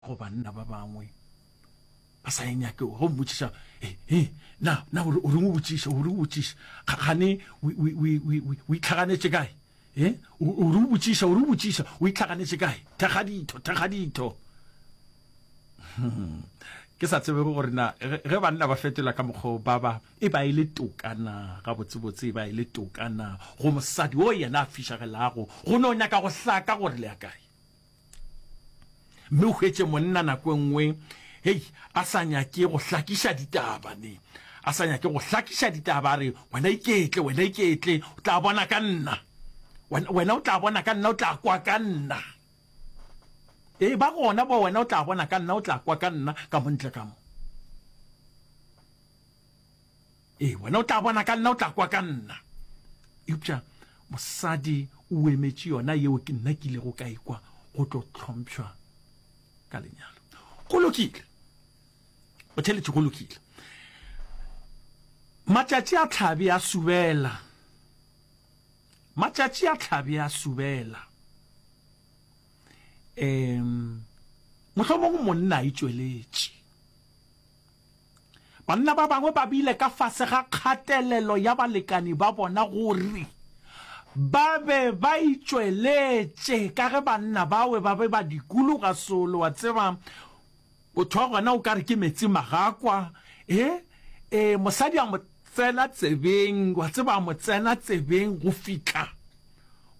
Go banna ba bangwe ba sa e nyakego, ge o mmotšiša, He, he, na, na o reng o botšiša, o reng o botšiša? Kgane o itlhaganetše kae? He, o reng o botšiša, o reng o botšiša? O itlhaganetše kae? Thekga ditho, thekga ditho. Ke sa tsebego gore na ge banna ba fetola ka mokgwa o ba ba e ba e le toka na, gabotsebotse e ba e le toka na go mosadi o yena a fišagelago go no nyaka go hlaka gore le ya kae. mme o hwetše monna nako e nngwe hei a sa nyake go hlakiša ditaba ne a sa nyake go hlakiša ditaba a re wena iketle wena iketle o tla bona ka nna wena o tla bona ka nna o tla kwa ka nna ee ba gona bo wena o tla bona ka nna o tla kwa ka nna ka montle ka mo Ee, wena o tla bona ka nna, o tla kwa ka nna. Eupša mosadi o emetše yona yeo ke nna ke ilego ka ikwa go tlo tlhompšhwa ka lenyalo. Go lokile, o theletše, go lokile. Matšatši a tlhabe a subela, matšatši a tlhabe a subela. Um mohlomong monna a itšweletše Banna ba bangwe ba bile ka fase ga kgatelelo ya balekani ba bona gore ba be ba itšweletše ka ge banna bawe ba be ba dikologa solo, wa tseba, motho wa gona o ka re ke meetse magakwa, e, e, mosadi a mo tsena tsebeng, wa tseba, a mo tsena tsebeng go fihla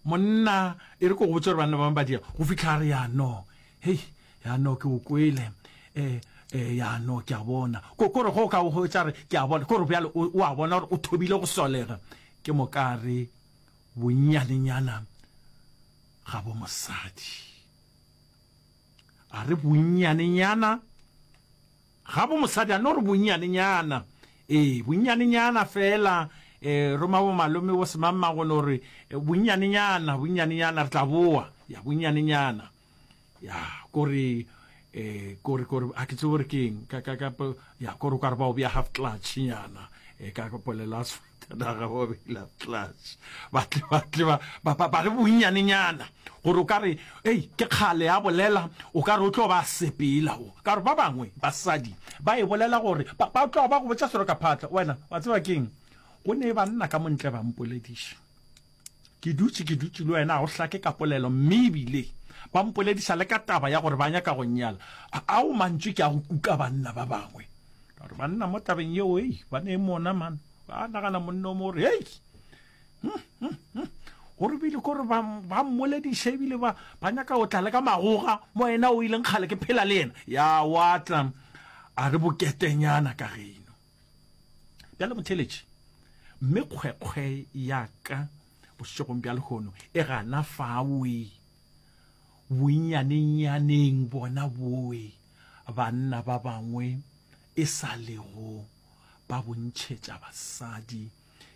monna, e re ke go botša gore banna ba bangwe ba dira, go fihla a re, Ya no, Hei, ya no ke o kwele. E, e, ya no ke a bona. Ko, kore go ka o hwetša re ke a bona. Kore bjale o, o a bona gore o thobile go solega. Ke mokare bonnyanenyana ga bo mosadi. A re bonnyanenyana ga bo mosadi, a no re bonnyanenyana. E, bonnyanenyana fela. E, roma bo malome bo semang magono re, bonnyanenyana, bonnyanenyana, re tla boa. Ya bonnyanenyana. ya kore eh kore kore a ke tsebe gore ke eng ka ka ka ya kore ka re ba o bja half clutch nyana e ka kopolela sfatanaga ba bela clutch ba tle ba tle ba ba ba re bonnyane nyana gore o ka re ei ke kgale ya bolela o ka re o tlo ba sepela o ka re ba bangwe basadi ba e bolela gore ba ba tlo ba go botsa sero ka phatla wena wa tseba keng go ne ba nna ka montle ba mpolediša Ke dutše ke dutše le wena, ga o hlake ka polelo, mme e bile ba mpolediša le ka taba ya gore ba nyaka go nnyala. Ao mantšu ke a go kuka banna ba bangwe. Ka gore banna mo tabeng yeo, hei, ba ne e mona, man. Ba nagana monna o mo gore, hei, hm, hm, hm, o re bile kore ba, ba mmolediša ebile ba, ba nyaka go tla le ka magoga mo yena o ileng kgale ke phela le yena. Ya wa tla a re boketenyana ka ge eno. Bjale motheletši, mme kgwekgwe ya ka bošegong bja lehono e gana fawe bonnyanenyaneng bona boe banna ba bangwe e sa lego ba bontšhetša basadi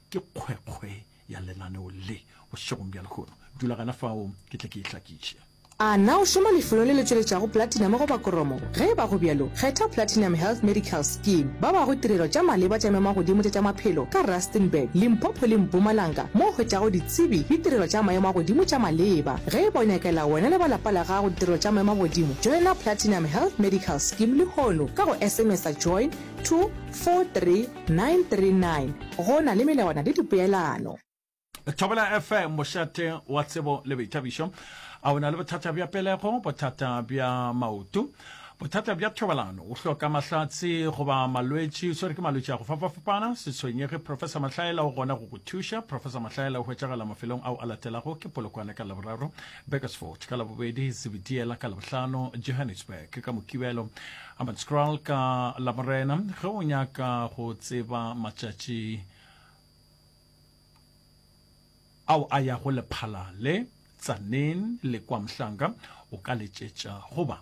ke kgwekgwe ya lenaneo le bošegong bja lehono. Dula gana fao ke tle ke e hlakiše. A na o šoma lefelong le le tšweletšago platinum goba koromo? Ge e ba go bjalo, kgetha Platinum Health Medical Scheme. Ba bago tirelo tša maleba tša memagodimo tša tša maphelo ka Rustenburg, Limpopo le Mpumalanga mo o hwetšago ditsebi le tirelo tša maemo a godimo tša maleba. Ge e ba o nyakela wena le ba lapa la gago ditirelo tša maemo a godimo, joina Platinum Health Medical Scheme lehono ka go SMS-a Join to 430. 939 Go na le melawana le dipeelano. Thobela FM, mošate wa tsebo le boithabišo. A o na le bothata bja pelego, bothata bja maoto, bothata bja thobalano, o hloka mahlatse goba malwetši, o swere ke malwetši a go fapafapana? Se tshwenyege, Professor Mahlaela o gona go go thuša. Professor Mahlaela o hwetšagala mafelong ao a latelago, ke Polokwane ka Laboraro, Beresfort ka Labobedi, Zebediela ka Labohlano, Johannesburg ka Mokibelo, Hammanskraal ka Lamorena. Ge o nyaka go tseba matšatši ao a ya go lephala le Tzaneen le kwa Mhlanga, o ka letšetša goba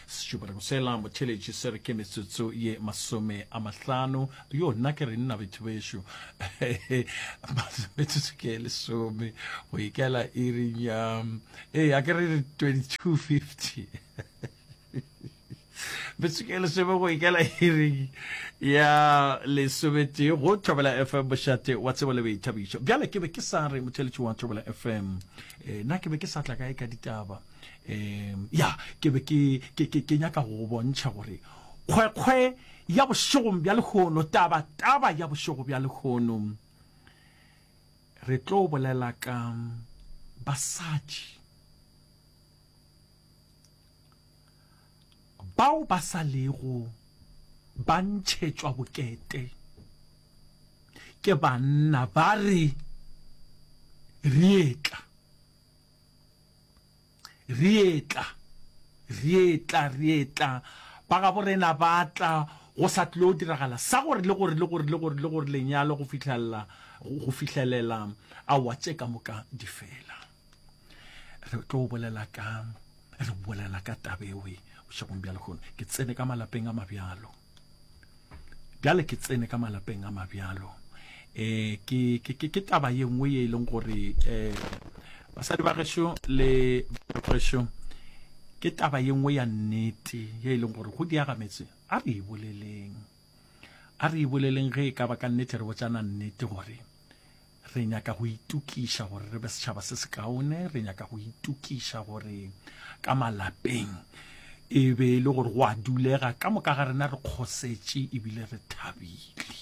Setšopareng sela motheletši se re ke metsotso ye masome a mahlano. Yo, nna ke re nna betho bešo. metsotso ke ye lesome go ikela iring ya ee a ke re 2250 Betsekele sebe go ikela hearing ya lesobete go thobela fm bošate wa tsebo le boithabišo bjale ke be ke sa re motheletši wa thobela fm eh, na ke be ke sa tla kae ka ditaba um ya ke be ke, ke, ke, ke nyaka go go bontšha gore kgwekgwe ya bošegong bja lehono taba taba ya bošego bja lehono re tlo bolela ka basadi bao ba sa lego ba ntšhetšwa bokete ke banna ba re rietla Re etla, re etla, re etla, ba gabo rena ba tla, go sa tlo diragala sa gore, le gore, le gore, le gore, le gore lenyalo go fihlelela, go fihlelela awa tše ka moka di fela. Re tlo bolela ka, re bolela ka tabewe bošegong bja lehono. Ke tsene ka malapeng a mabjalo. bjale ke tsene ka malapeng a mabjalo eh ke ke ke taba ye nngwe ye e leng gore eh basadi ba gešo le gešo ke taba ye nngwe ya nnete ye e leng gore go diaga metse a re e boleleng a re e boleleng ge e ka ba ka nnete re botsana nnete gore Re nyaka go itokiša gore re be setšhaba se sekaone. Re nyaka go itokiša gore ka malapeng e be e le gore go a dulega ka moka ga rena re kgosetše ebile re thabile.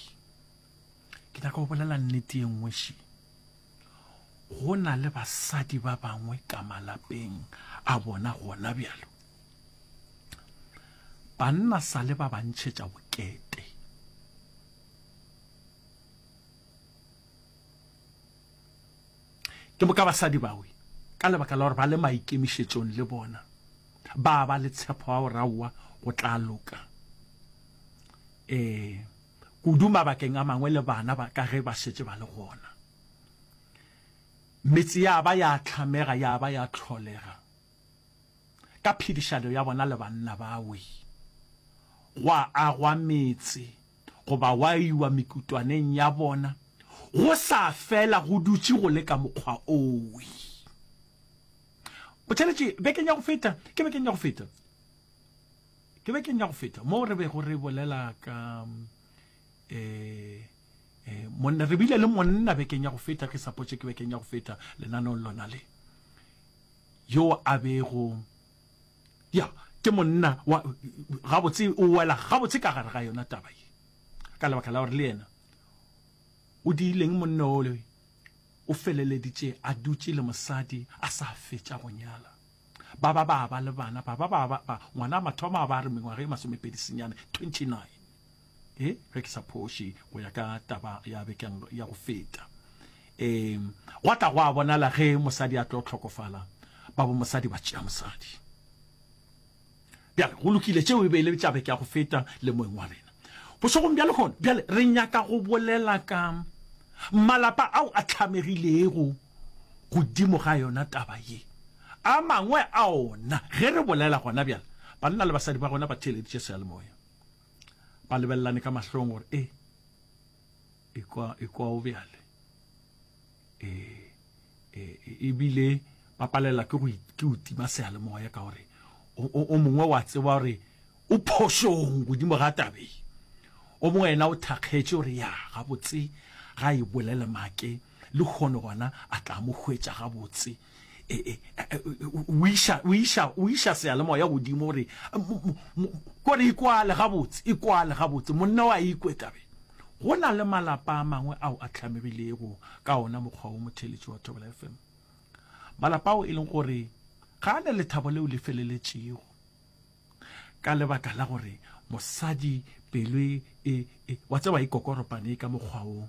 Ke nyaka go bolela nnete ye nngwe še go na le basadi ba bangwe ka malapeng a bona gona bjalo banna sa le ba bantšhetša bokete Ke boka basadi bawe, ka lebaka la gore ba le maikemišetšong le bona, ba ba le tshepo ya gore aowa go tla loka. Ee, kudu mabakeng a mangwe le bana ba ka ge ba šetše ba le gona. Metse ya ba ya hlamega, ya ba ya tlholega. ka phedišano ya bona le banna bawe, gwa agwa metse goba gwa iwa mekutwaneng ya bona, go sa fela go dutše go le ka mokgwa owe. Botšweletše, bekeng ya go feta, ke bekeng ya go feta, ke bekeng ya go feta, moo re bego re bolela ka, ee, eh, monna re bile le monna bekeng ya go feta ke sapotše ke bekeng ya go feta lenanong lona le yo a bego ya ke monna wa gabotse o wela gabotse ka gare ga yona taba ye ka lebaka la gore le yena o diileng monna ole o feleleditše a dutše le mosadi a sa fetša go nyala ba ba ba ba le bana ba ba ba ngwana a mathomo a ba re mengwaga e masomepedi senyane 29 e ge ke sa phoše go ya ka taba ya bekeng ya go feta e gwa tla go a bonala ge mosadi a tlo tlhokofala ba bo mosadi ba tšea mosadi bjale go lokile tšeo e be e le tša beke ya go feta le moeng wa rena bošegong bja lehono bjale re nyaka go bolela ka malapa ao a tlhamegilego godimo ga yona taba ye a mangwe a ona ge re bolela gona bjale banna le basadi ba gona ba theeleditše seyalemoya ba lebelelane ka mahlong gore e ekwa ekwa o bjale e e ebile ba palela ke go ke o tima seale moya ka gore o mongwe wa tseba gore o phošong godimo ga tabe o mongwe ena o thakgetše gore ya ga botse ga e bolele make le kgone gona a tla mo hwetša ga botse e, e, e, o iša o iša o iša sealemoya godimo gore kore ikwale gabotse ikwale gabotse monna wa ikwe tabe go na le malapa a mangwe ao a tlhamegilego ka ona mokgwa o motheletši wa thobela fm malapa ao e leng gore ga a ne lethabo leo le feleletšego ka lebaka la gore mosadi pelo e, e, e wa tseba e kokoropane ka mokgwa o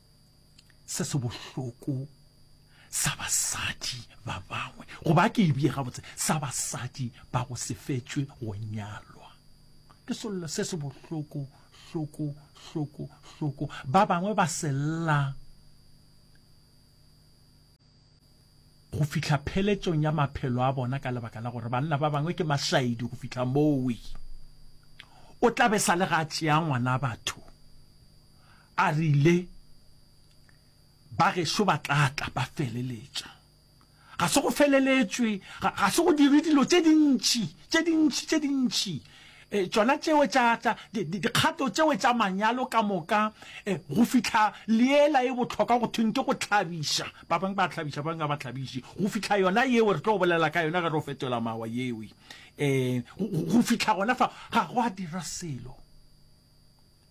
se se bohloko sa basadi ba bangwe goba ke e bie gabotse sa basadi ba go sefetswe go nyalwa ke sello se se bohloko hloko hloko hloko ba bangwe ba sella go fihla pheletšong ya maphelo a bona ka lebaka la gore banna ba bangwe ke mašaedi go fihla mowe o tla be sa le ga tšea ngwana batho a rile ba gešo ba tla tla ba feleletša ga se go feleletšwe ga se go dire dilo tše dintši tše dintši tše dintši E, tšona tšeo tša, tša di, di, dikgato tšeo tša manyalo ka moka e, go fihla leela e bohlokwa go thweng ke go tlhabiša ba bangwe ba tlhabiša ba bangwe ba tlhabiše go fihla yona yeo re tlo go bolela ka yona ge re o fetola mawa yewe um go fihla gona fa ga go a dira selo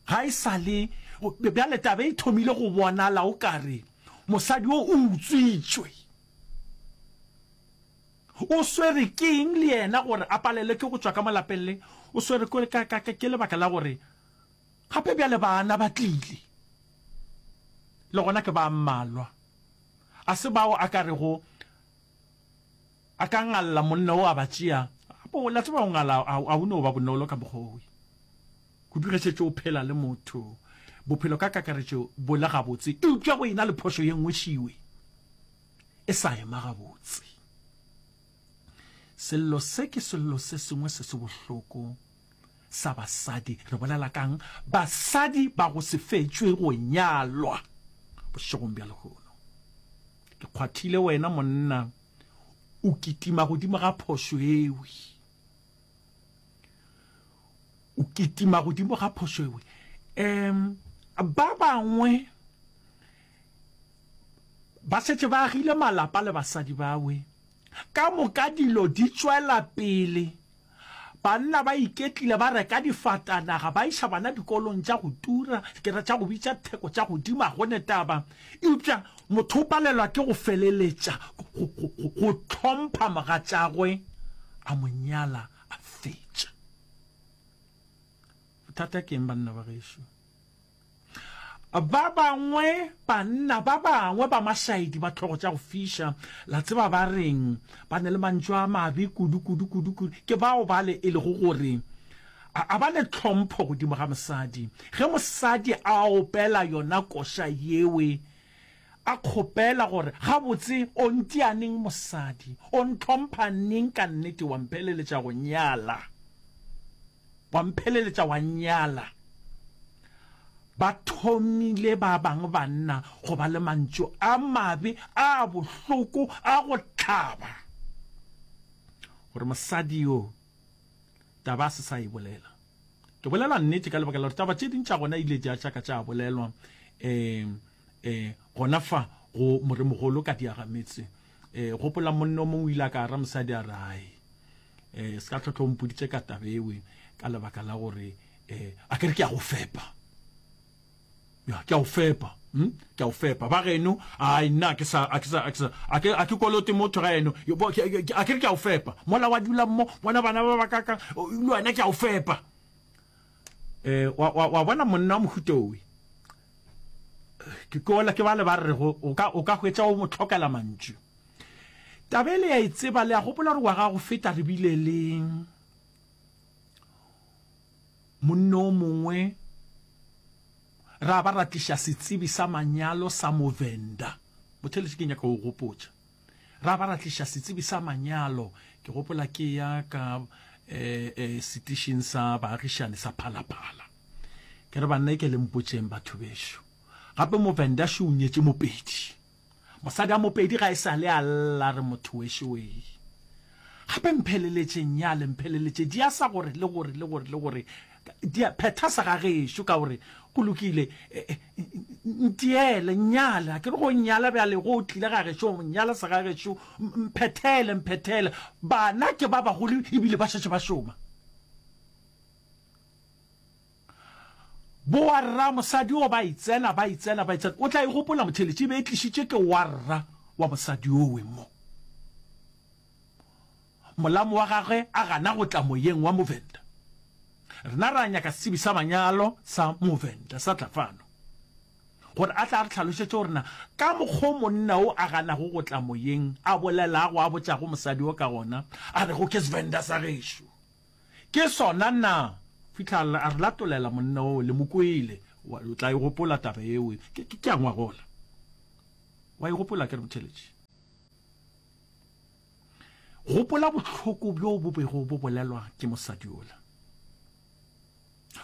ga e sa le bjale tabe e thomile go bonala o kare mosadi o o utswitswe O swere ke eng le yena gore a palelwe ke go tšwa ka mo lapeng le? O swere ke lebaka la gore gape bjale bana ba tlile, le gona ke ba mmalwa. A se bao a ka rego a ka ngalla monna wo a ba tšea? Gape la tseba go ngala ga go no ba bonolo ka mokgwa wo. Kudu ge šetše o phela le motho, bophelo ka kakaretšo bo le gabotse, eupša go e na le phošo ye nngwe šiwe. e sa ema gabotse. Sello se ke sello se sengwe se se bohloko sa basadi. Re bolela kang? Basadi ba go se fetšwe go nyalwa bošegong bja lehono. Ke kgwathile wena monna o kitima godimo ga phošo ewe. O kitima godimo ga phošo ewe. Em ba bangwe Ba šetše ba agile malapa le basadi bawe. Ka moka dilo di tšwela pele. Banna ba iketlile, ba reka difatanaga, ba iša bana dikolong tša go tura, dikere tša go bitša theko tša godimo, ga go ne taba. Eupša motho o palelwa ke go feleletša go hlompha mogatšagwe, a mo nyala a fetša. Bothata ke eng, banna ba gešo? Ba bangwe, banna ba bangwe ba mašaedi ba tlhogo tša go fiša, la tseba ba reng? Ba na le mantšu a mabe kudu, kudu, kudu, kudu. Ke bao bale e lego gore a ba le tlhompho godimo ga mosadi. Ge mosadi a opela yona koša yewe, a kgopela gore, Gabotse o ntia neng mosadi? O ntlhompha neng ka nnete wa mpheleletša go nyala? Wa mpheleletša wa nnyala. Ba thomile ba bang banna go ba le mantšu a mabe a bohloko a go hlaba gore mosadi yo taba a se sa e bolela. Ke bolela nnete ka lebaka la gore taba tše ding tša gona ile tša tšaka tša bolelwa um um gona fa go moremogolo ka diagametse. E gopola monne o mongwe o ile a ka ra mosadi a re hai e se ka tlhotlho mpoditse ka tabewe ka lebaka la gore e a ke re ke a go fepa ya ke a go fepa hm ke a go fepa ba geno ai nna ke sa a ke sa a ke a ke kolote motho ga eno a ke re ke a go fepa mola wa dula mo bona bana ba ba ka ka le wena ke a go fepa E, wa, wa, wa bona monna wa mohuta owe ke kola ke bale ba re go o ka o ka hwetša o mo tlhokela mantšu tabele ya itseba le a gopola gore wa ga go feta re bile le monna o mongwe ra ba ra tliša setsebi sa manyalo sa movenda botheletse ke nyaka go gopotša Ra ba ra tliša setsebi sa manyalo, ke gopola ke eya ka setišing sa baagišani sa Phala Phala. Ke re, Banna, e ke le mpotšeng, batho bešo, gape Movenda šo o nyetše Mopedi. Mosadi a Mopedi ga e sa le a lla, re motho wešoee. Gape mpheleletšeng nyale, mpheleletše diasa gore le gore le gore le gore Dia phetha sa ga gešo ka gore go lokile ntiele nnyala ke re go nnyala bjale go tlile ga gešo nnyala sa ga gešo mphethele mphethele bana ke ba bagolo ebile ba šetše ba šoma bo warra mosadi o ba itsena ba itsena ba itsena o tla e gopola motheletše e be e tlišitše ke warra wa mosadi owe mo Molamo wa gagwe a gana go tla moyeng wa Movenda. Rena ra nyaka setsebi sa manyalo sa Movenda sa tla fano gore a tle a re tlhalošetše gore na ka mokgwa o monna o a ganago go tla moyeng a bolelago a botšago mosadi wo ka gona a rego ke Svenda sa gešo ke sona na fihla a re latolela monna wo le mo kwele wa o tla e gopola taba eo ke ke a ngwagola wa e gopola ke re Motheletši gopola bohloko bjo bo bego bo bolelwa ke mosadi ola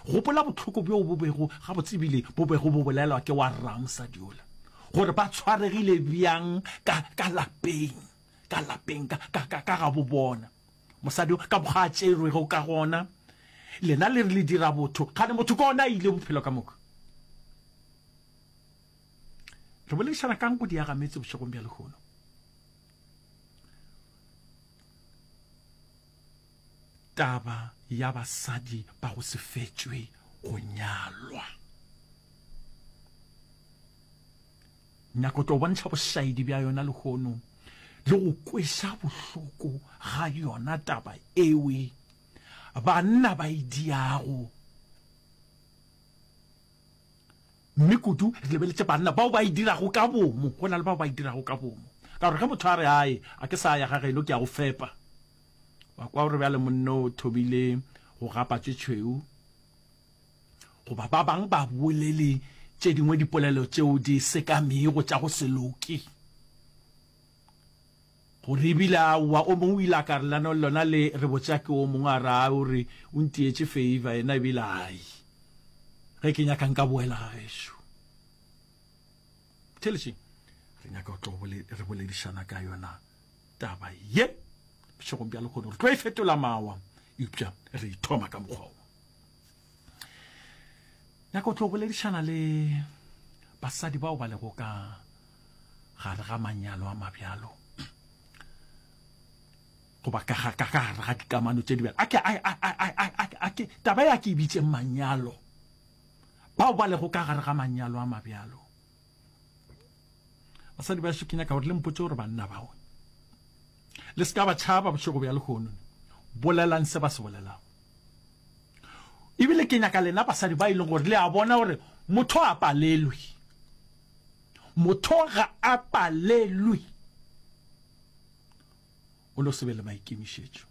gopola bohloko bjo bo bego ga botsebile bo bego bo bolelwa ke wa rra mosadi ola gore ba tshwaregile bjang ka ka lapeng ka lapeng ka ka ka ka ga bo bona mosadi ka boga a tšerwego ka gona lena le re le dira botho gane motho ka ona a ile bophelo ka moka re boledišana kang go diaga metse bošegong bja lehono taba ya basadi ba go se fetšwe go nyalwa nyako tlo bontšha bošaedi bja yona lehono le go kwesa bohloko ga yona taba ewe banna ba e diago Mme kudu re lebeletše banna bao ba e dirago ka bomo go na le bao ba e dirago ka bomo. Ka gore ge motho a re, Ae, a ke sa ya ga geno, ke a go fepa, wa kwa gore bjale monna o thomile go gapa tše tšhweu. Goba ba bangwe ba bolele tše dingwe dipolelo tšeo di sekamego tša go se loke. Gore e bile aowa, o mongwe o ile a ka re, Lanong, lona le re botša ke o mongwe a re, Ai, o re, o ntietše feiva yena, e bile ai, ge ke nyaka nka boela ga gešo. Theeletšeng, re nyaka go tlo re boledišana ka yona taba ye bošegong bja lekgono, re tlo e fetola mawa, eupša re e thoma ka mokgwa wo. nyaka o tlo boledišana le basadi bao ba lego ka gare ga manyalo a mabjalo goba ka gare ga dikamano tše di bjalo ake taba ya ke e bitše manyalo bao ba lego ka gare ga manyalo a mabjalo basadi ba šo ke nyaka gore le mpotse gore banna bao le se ka ba tšhaba bošego bja lehono bolelang se ba se bolelago ebile ke nyaka lena basadi ba e leng gore le a bona gore motho a palelwe motho ga a palelwe o no se be le maikemišetšo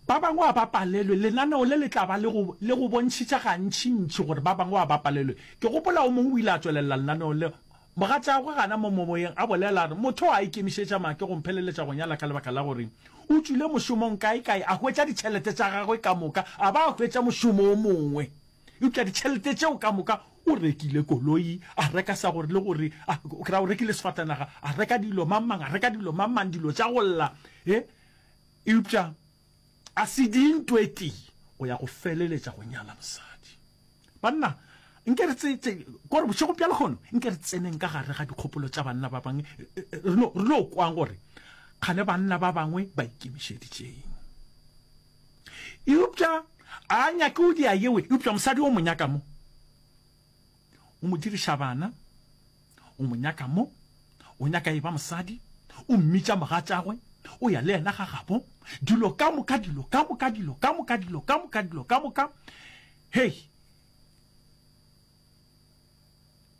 Ba bangwe a ba palelwe. Lenaneo le le tla ba le go, le go bontšhitša gantšintši gore ba bangwe a ba palelwe. Ke gopola o mongwe o ile a tšwelelela lenaneong leo. Mogatšagwe gana mo momoyeng a bolela a re, Motho yo a ikemišetša maake go mpheleletša go nyala ka lebaka la gore o tšwile mošomong kaekae a hwetša ditšhelete tša gagwe ka moka a ba a hwetša mošomo o mongwe eupša ditšhelete tšeo ka moka O rekile koloi, a reka sa gore le gore, a o kry-a o rekile sefatanaga, a reka dilo mang mang, a reka dilo mang mang, dilo tša go lla. He, eupša a se dinto e tee go ya go feleletša go nyala mosadi. Banna, nke re tse, tse, kore bošego bja lehono, nke re tseneng ka gare ga dikgopolo tša banna ba bangwe, re no, re no kwang gore kgane banna ba bangwe ba ikemišeditšeng. eupša a nyake o di a yewe eupša mosadi o mo nyaka mo o mo diriša bana o mo nyaka mo o nyaka e ba mosadi o mmitša mogatšagwe o ya le yena ga gabo dilo ka moka dilo ka moka dilo ka moka dilo ka moka dilo ka moka hei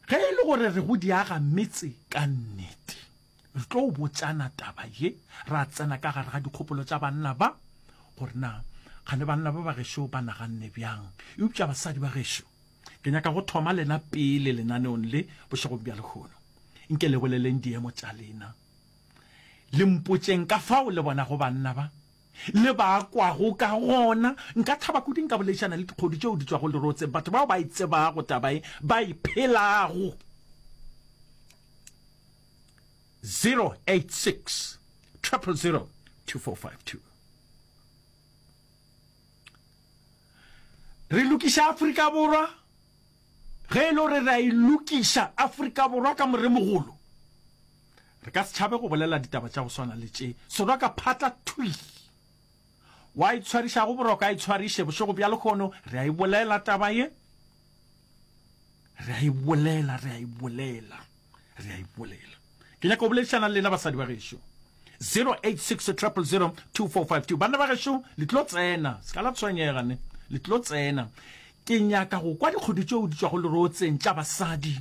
ge e le gore re go diaga metse ka nnete Re tlo botšana taba ye ra tsena ka gare ga dikgopolo tša banna ba, gore na kgane banna ba bagešo ba naganne bjang. Eupša basadi ba gešo, ke nyaka go thoma lena pele lenaneong le bošegong bja lehono. Nke le boleleng diemo tša lena, le mpotšeng ka fao le bonago banna ba. le ba kwago ka gona. Nka thaba kudu nka boledišana le dikgodu tšeo di tšwago lerotseng, batho bao ba e tsebago taba ye, ba e phelago. 086 000 2452 Re lokiša Afrika Borwa! Ge e le gore re a e lokiša Afrika Borwa ka moremogolo, re ka se tšhabe go bolela ditaba tša go swana le tše. Soroka phatla thwi! Wa itshwariša go boroko a itshwariše bošego bja lekgono, re a e bolela taba ye, re a e bolela, re a e bolela. re a ipolela ke nyaka go boledišana le lena basadi ba gešo 0860002452 banna ba gešo le tlo tsena se ka la tshwenyega ne le tlo tsena ke nyaka go kwa dikgodu tšeo di tswago lerotseng tša basadi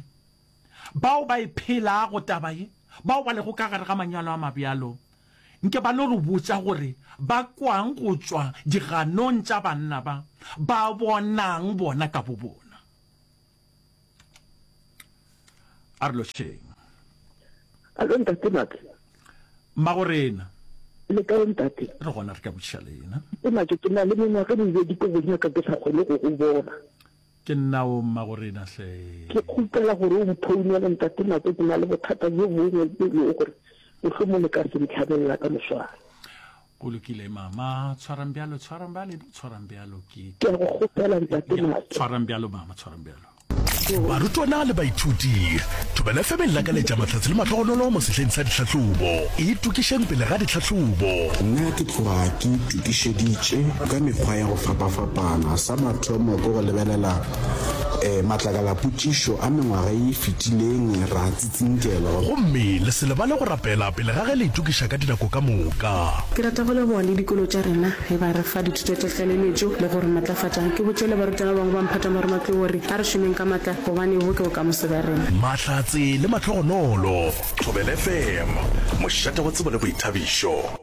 bao ba e phelago taba ye bao ba lego ka gare ga manyalo a mabjalo nke ba no re botsa gore ba kwang go tswa diganong tša banna ba ba bonang bona ka bo bona a re lošeng alo ntate make magorena le kae ntate re gona re ka botšiša lena ke make ke na le mengwaga mebedi ko bonyaka ke sa kgone go go bona ke nnao magorena hle ke kgopela gore o mphounele ntate make ke na le bothata jo bongwe e lego gore mohlomong le ka se ntlhabelela ka moswana Go lokile, Mama. Tshwarang bjalo, tshwarang ba le tshwarang bjalo ke. Ke a go kgopela, Ntate Mato. Tshwarang bjalo, Mama, tshwarang bjalo. Barutwana le baithuti, Thobela FM e lakaletša mahlatse le mahlogonolo mo sehleng sa ditlhahlobo. Itokišeng pele ga ditlhahlobo. Nna ke tloga ke itokišeditše ka mekgwa ya go fapafapana. Sa mathomo ke go lebelela um matlakalapotšišo a mengwaga ye e fetileng, ra. Tsinkelo. Gomme le se lebale go rapela pele ga ge le itokiša ka dinako ka moka. Ke rata go leboga le dikolo tša rena ge ba re fa dithuto tša tlaleletšo le go re matlafatša. Ke botše le barutwana ba bangwe ba mphata mo re matlwe gore a re šomeng ka matla gobane bo ke bokamoso bja rena. Mahlatse le mahlogonolo. Thobela FM, mošate wa tsebo le boithabišo.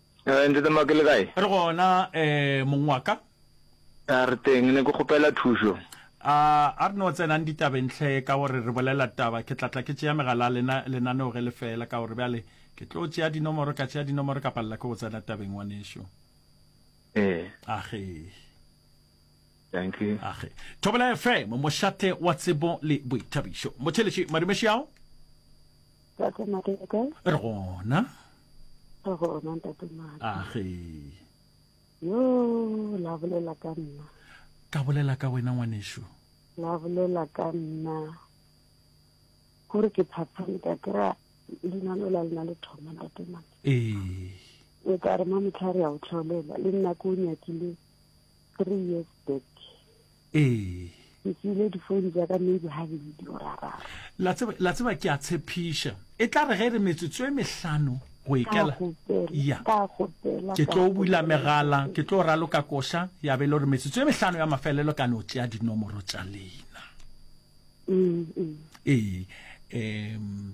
Eh, Ntate Maki le kae? Re gona, eh, mong wa ka. A re teng, ne ke kgopela thušo. A, a re no tsenang ditabeng hle, ka gore re bolela taba. Ke tla tla ke tšea megala a lena, lenaneo ge le fela, ka gore bjale ke tlo tšea dinomoro, ka tšea dinomoro, ka palela ke go tsena tabeng, ngwanešu. Eh. Ahee. Thank you. Age. Thobela FM, mošate wa tsebo le boithabišo. Motheletši, madume xiao? Tate Mate, le kae? Re gona. Re gona, Tate Mate. Age. Yo, la bolela ka nna. Ka bolela ka wena ngwanešu. La bolela ka nna. Gore ke phaphame ka kry-a leina lola le na le thoma, Tate Mate. Ee. O ka re mamotlha re ya o tlhaolela. Le nna ke o nyakile three years back ee ke tsile difounu tsa ka maybe ga bedi orara la tseba ke a tshepiša e tla re ge re metsotso e mehlano go ekela ya ke tlo bula megala ke tlo ralo ka koša ya be le gore metsotso e mehlano ya mafelelo ka no tšea dinomoro tša leina mm, mm. ee um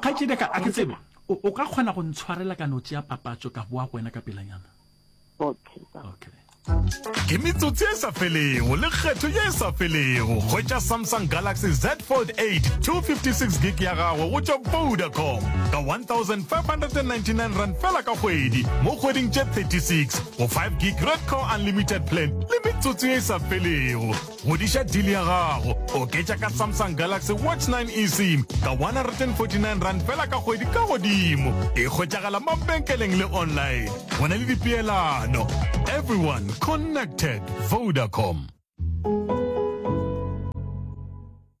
kgaitsedi ka a ke tsebe o ka kgona go ntshwarela ka notse ya papatso ka boa go wena ka pelanyana okay okay ke metsotsi e sa felego le kgetho ye e sa felego hwetša samsung galaxy z fold 8 256 gig ya gago go tšwa vodacom ka 1599 rand fela ka kgwedi mo kgweding tše 36 go 5 gig red core unlimited plan le metsotsi ye e sa felego Ngwadiša deal ya gago. Oketša ka Samsung Galaxy Watch 9 eSIM ka R149 fela ka kgwedi ka godimo. E hwetšagala mabenkeleng le online. Go na le dipeelano. Everyone connected. Vodacom.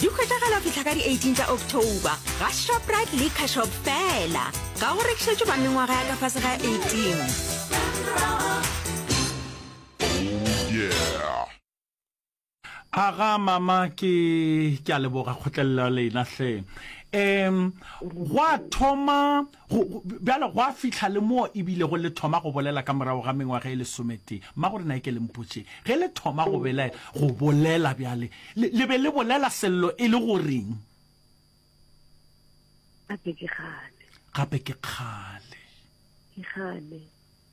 Di hwetšagala go fihla ka di 18 tša October ga Shoprite le Cashop fela. Ga go rekišetšwe ba mengwaga ya ka fase ga 18. aga mama ke ke a leboga kgotlelela lena hle um gwa thoma Go, go, bjale gwa fihla le moo e bilego le thoma go bolela ka morago ga mengwaga e lesometee. Mma, gore na e ke le mpotše, ge le thoma go belaela, go bolela bjale, le, le be le bolela sello e le goreng? Gape ke kgale. Gape ke kgale. Ke kgale.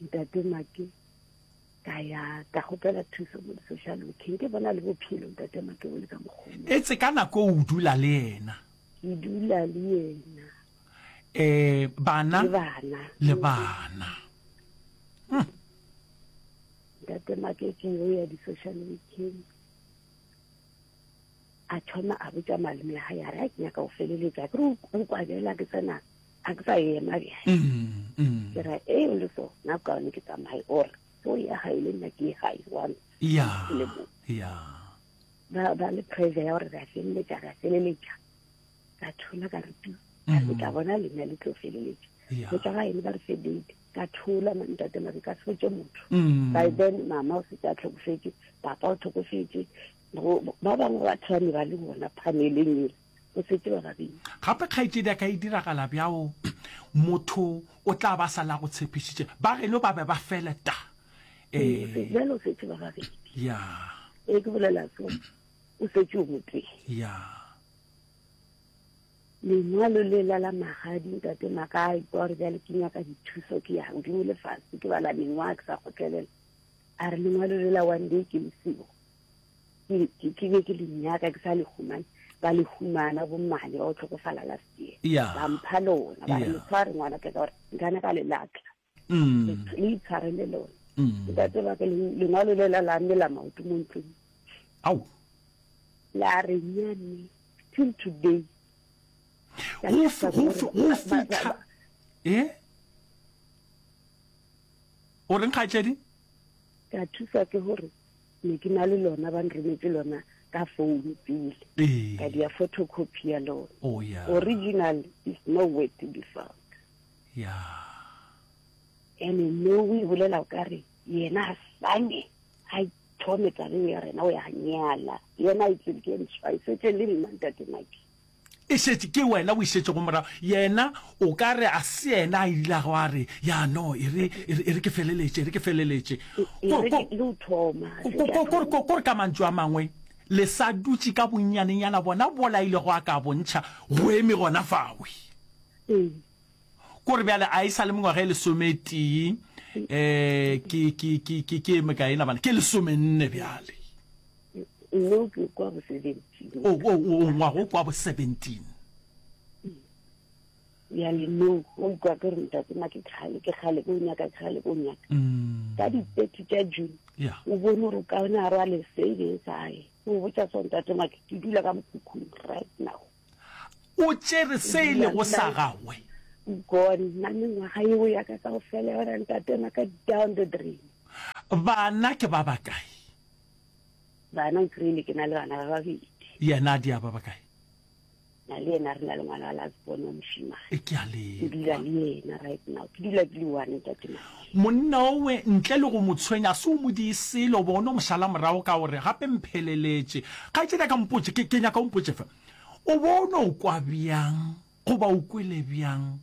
ntate make ka ya ka gopela thuso mo di-social working ke bona le bophelo ntate make o le ka mokgone e tse ka nako o dula le yena ke dula le yena um bana le bana hmm. ntate make ke yo ya di-social working a thoma a botsa malome ga ya re a ke nyaka o feleletsa ke re o kwabela ke tsena a ke sa ema bjale mm, mm. ke ra e le so na ka ne ke tsamaye or so ya ga ile nna ke ga e one ya ya ba ba le pressure ya gore ra feleletsa ra feleletsa ka thola ka rutu ka mm. tla bona le nna le tlo feleletsa go tla ga ene ba re fe date ka thola ntate mare ka setse motho mm. by then mama o setse a tlhokofetse papa o tlhokofetse ba bangwe ba thane ba le bona phaneleng ele o setse wa babedi. Gape kgaetšedi a ka e diragala bjao motho o tla ba sala go tshepišitše ba geno ba be ba fele ta Ee, bjale o setse ba babedi. ya E ke bolela so, o setse o motee. ya Lengwalo le la la magadi ntate maka a ikwa gore bjale ke nyaka dithuso ke ya godimo le fatshe ke bala mengwaga ke sa kgotlelela. A re lengwalo le la one day ke lesio. ke be ke le nyaka ke sa le humane ba le humana bommane ba o tlhokofala last year ba mpha lona ba le tshware ngwana ka gore nkane ka le latla mm. le itshware le lona mm. ntate ba ke lengwalo le la la mme la maoto mo ntlong au la re nyane till today go fitlha e o reng kgatledi ka thusa ke gore ne ke na le lona ba nrometše lona ka phone pele ee. ka dia photocopy ya lona oh, yeah. original is no way to be found yeah. ene no o e bolela o ka re yena a sane a thome tabeng ya rena o ya nyala yena a itsebe ke ntshwa e setse le nna ntate maki E šetše ke wena o e šetšego morago. Yena o ka re a se yena a ilago a re, Ya no, e re, e re, e re ke feleletše, e re ke feleletše. E Ko- re ko- ke o thoma. Ko- ko- ko- ko- ko- ko re ka mantšu a mangwe, le sa dutše ka bonnyanenyana bona bola a ilego a ka bontšha, go eme gona fawe. Ee. Ko re bjale a e sa le mengwaga e lesometee, um ke, ke, ke, ke, ke e mekaena bana? Ke lesomenne bjale. ngwako kwa bo seventeen o o o ngwago kwa bo seventeen bjale no o ikwa ke re ntate ma ke kgale ke kgale ko nyaka ke kgale ko nyaka Mm, ka di-thirty tša june yeah. o bone gore o ka one a rwale savings ae o botsa so ntate make ke dula ka mokhukhung right now o tšere se e lego sa gagwe gone nna le ngwaga eo yaka ka go fela yona ntate maka down the drain bana ke ba bakae Bana o kry-ile ke na le bana ba babedi. Yena a diaba ba kae? Na le yena re na le ngwana wa lasbone wa moshimane. E ke a le. Ke dula le yena right now. Ke dula ke le one tate na. Monna owe ntle le go mo tshwenya a se o mo di selo bo no moshala morago ka gore gape mpheleletše. Kgaetšedi a ka mpotše ke ke nyaka o mpotše fe. O bo no kwa bjang goba o kwele bjang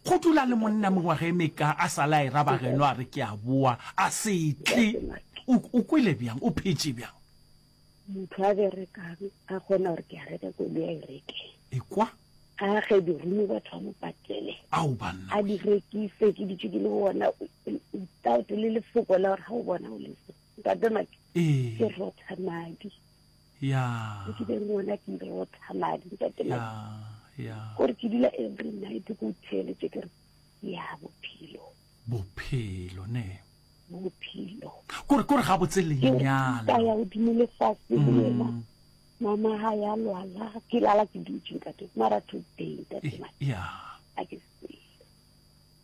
Go dula le monna mengwaga e meka a sa la e raba geno a re ke a boa a se tle. O o kwele bjang? O phetše bjang? motho a berekang a kgona gore ke a reka koloi a e reke Ekwa? a ge dirumo batho ba mo patele Ao banna. a di rekise ke ditšo ke le bona without le lefoko la gore ga o bona o lese ntate make Ee. ke rotha madi ya ke be ngwana ke be o tsamadi ntate ya ya gore ke dula every night ke o theeletse ke re ya bophelo bophelo ne bophelo kore kore ga botse lenyalo ka ya godimo le fatshe le mm. yena mama ga ya lwala ke lala ke dutse ntate mara today ntate ya a ke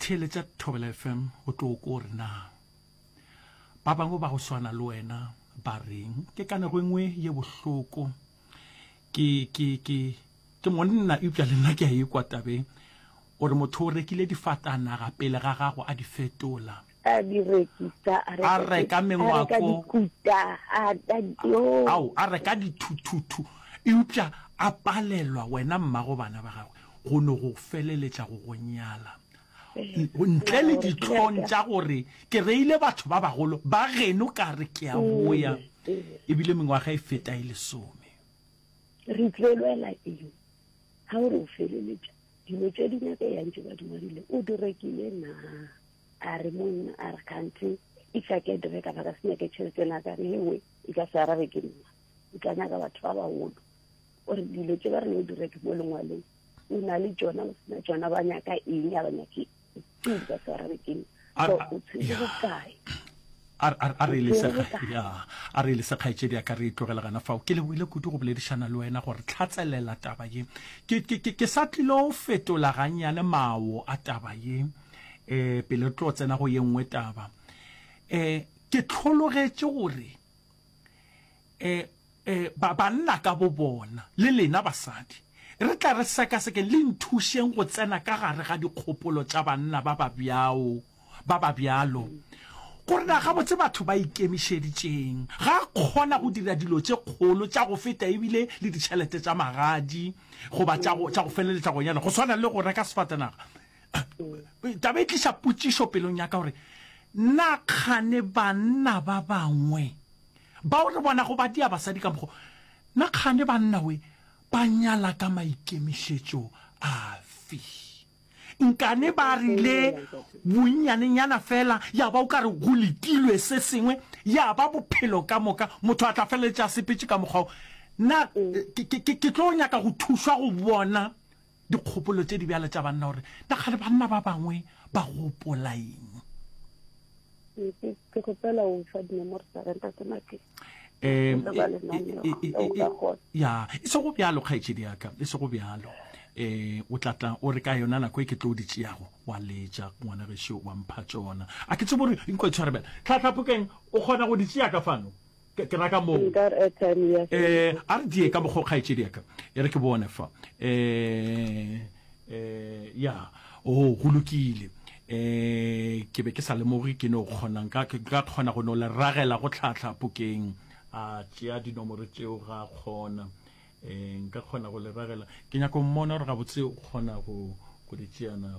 Theeletša Thobela FM o tlo kwa gore na ba bangwe ba go swana le wena ba reng. Ke ka nako e nngwe ye bohloko ke, ke, ke, ke monna eupša le nna ke a ekwa tabeng. O re motho o rekile difatanaga pele ga gago a di fetola. a di rekisa a reka mengwako dikuta a ao a reka dithuthuthu eupša a palelwa wena mmago bana ba gagwe go no go feleletša go go nyala ntle le ditlhong tša gore ke reile batho ba bagolo ba geno ka re ke a boya ebile mengwaga e feta e lesome re tlelwela eng ga o re o feleletša dilo tše di nyaka yang tše ba di ngwadile o di rekile na a re monna a re kganthe e tla ke dire ka baka se nyake tšhelete na ka re engwe e ka se arabe ke nna e tla nyaka batho ba bagolo o re dilo tse ba re no dira ke mo lengwaleng o na le tsona o sena tsona ba nyaka eng a ba nyake ke ka se arabe ke nna o tshwere bokae a re le sekgaetšedi a ka re e tlogela gana fao ke leboile kudu go boledišana le wena gore tlhatselela taba ye ke sa tlilo fetola gannyane mawo a taba ye um pele re tlo tsena go ye nngwe taba um ke tlhologetše gore um um ba banna ka bo bona le lena basadi re tla re sekasekeng le nthušeng go tsena ka gare ga dikgopolo tša banna ba ba bjao ba ba bjalo gore na gabotse batho ba ikemišeditšeng ga a kgona go dira dilo tše kgolo tša go feta ebile le ditšhelete tša magadi goba tša go feleletša go nyala go swana le go reka sefatanaga taba e tliša potšišo pelong ya ka gore na kgane banna ba bangwe bao re bonago ba dia basadi ka mokgo na kgane banna we ba nyala ka maikemišetšo afe nkane ba rile bonnyanenyana fela ya ba o ka re go lekilwe se sengwe ya ba bophelo ka moka motho a tla feleletša sepetše ka mokgwao na ke tlo nyaka go thušwa go bona Dikgopolo tše di bjale tša banna gore na kgale banna ba bangwe ba gopola eng? Ke kgopela o fa dinomoro tsa ga ntate Makeng. Um, ya e se go bjalo kgaetšedi yaka e se go bjalo eh o tlatla o re ka yona nako e ke tlo di tšeago wa letša ngwana gešo wa mpha tsona a ke tse bore nkwa tshwarebela tlhatlhapokeng o kgona go di tšea ka fano Ke ra ka moo. Nkar airtime ya ge. Eh, a re die ka mokgwa kgaetšedi ya ka. E re ke bone fa. Eh, eh, ya. Oh, go lokile. Eh, ke be ke sa lemoge ke no kgona nka ke ka kgona go no le ragela go tlhatlha pokeng. A tšea dinomoro tšeo ga kgona. Eh, nka kgona go le ragela. Ke nyako mmona gore gabotse o kgona go go di tšea na.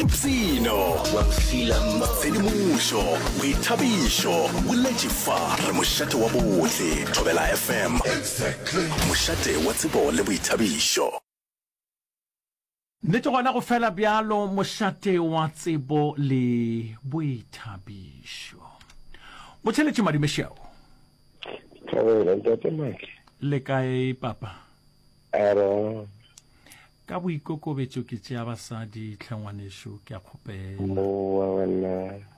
ipshino tshedimošo boithabišo boletše fa re mošate wa bohle thobela fm mošate wa tsebo le boithabišo nnete gona go fela bjalo mošate wa tsebo le boithabišo botšheletše madimešeo Thobela, ntate Maki. Le kae, Papa? A re bang? Ka boikokobetšo ke tšea basadi, tlhe ngwanešu, ke a kgopela. Mowa wena.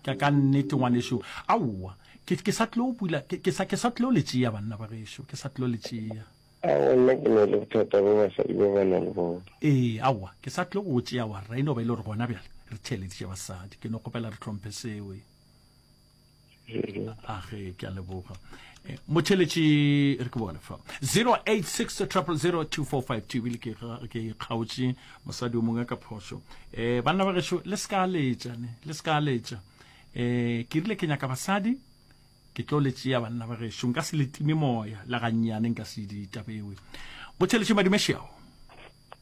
Ke a ka nnete ngwanešu. Aowa, ke, ke sa tlilo bula, ke, ke sa, ke sa tlilo le tšea banna ba gešo, ke sa tlilo le tšea. A gona ke ne le bothata bo basadi ba ba na le bona. Ee, aowa, ke sa tlilo go tšea warra, e no ba e le gore gona bjale re theeleditše basadi. Ke no kgopela re tlhomphe seo. age ke a leboga eh, motheletši re ke bone fa 086 0002452 ebile ke kgaotše mosadi o mongwe ka phošo um eh, banna ba gešo le se ka letša ne le se ka letša um eh, ke rile ke nyaka basadi ke tlo le tšea banna ba gešo nka se letime moya la gannyane nka se ditabewe motheletši madumešeao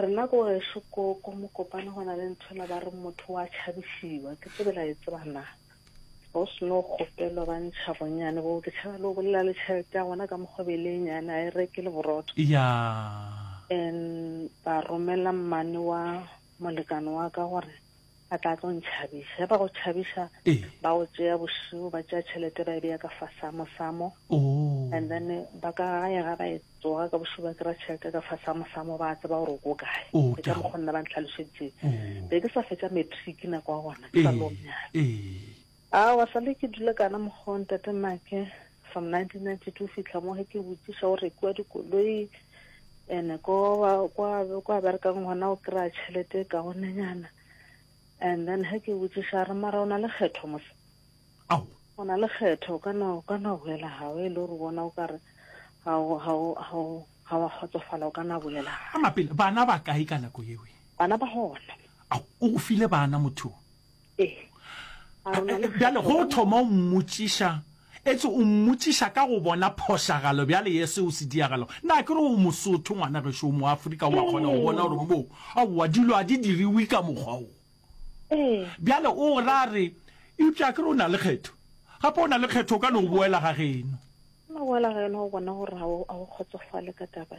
Rena ko gešo ko ko mokopane go na le ntho la ba re motho wa tšhabisiwa ke tsebe la e tseba na go se no kgopelwa ba ntšha bonyane bo ke tšhaba le o bolela le tšhelete ya gona ka mokgwebele e nyane a e reke le borotho ya and ba romela mmane wa molekane wa ka gore Ba tla tlo ntšhabiša. Ge ba go tšhabiša, Ee. ba go tšea bošego, ba tšea tšhelete ba e beya ka fasa mosamo. Oo. And then ba ka gae ga ba e tsoga ka bošego ba kry-a tšhelete ka fasa mosamo ba tseba gore o ko kae. Oo, Ke ke a ka go- mokgo nna ba ntlhalošeditseng. Oo. Be ke sa fetša matric nako ya gona, ke sa Ee. lo nyala. Ee. Aowa, sa le ke dule kana mokgwa wo Ntate Make from 1992 go fihla mo ge ke botšiša go rekiwa dikoloi and ko ba kwa kwa berekang gona o kry-a tšhelete e kaonenyana and then ge ke botšiša re mara o na le kgetho mose Ao. o na le kgetho o ka no o ka no boela gago e le gore bona o kare ga o ga o ga o ga wa kgotsofala o ka na boela gago Ama pele, bana ba kae ka nako yewe? bana ba gona Ao, o go file bana motho o? Bjale go thoma o mmotšiša, etse o mmotšiša ka go bona phošagalo bjale ye seo se diagalo. Na ke re o Mosotho ngwana gešo o mo Afrika wa kgona go bona gore bo aowa dilo a di diriwe ka mokgwa o. Bjale o ra re eupša ke re o na le kgetho. Gape o na le kgetho o ka no boela ga geno. Ke no boela ga geno go bona gore ga o kgotsofale ka taba.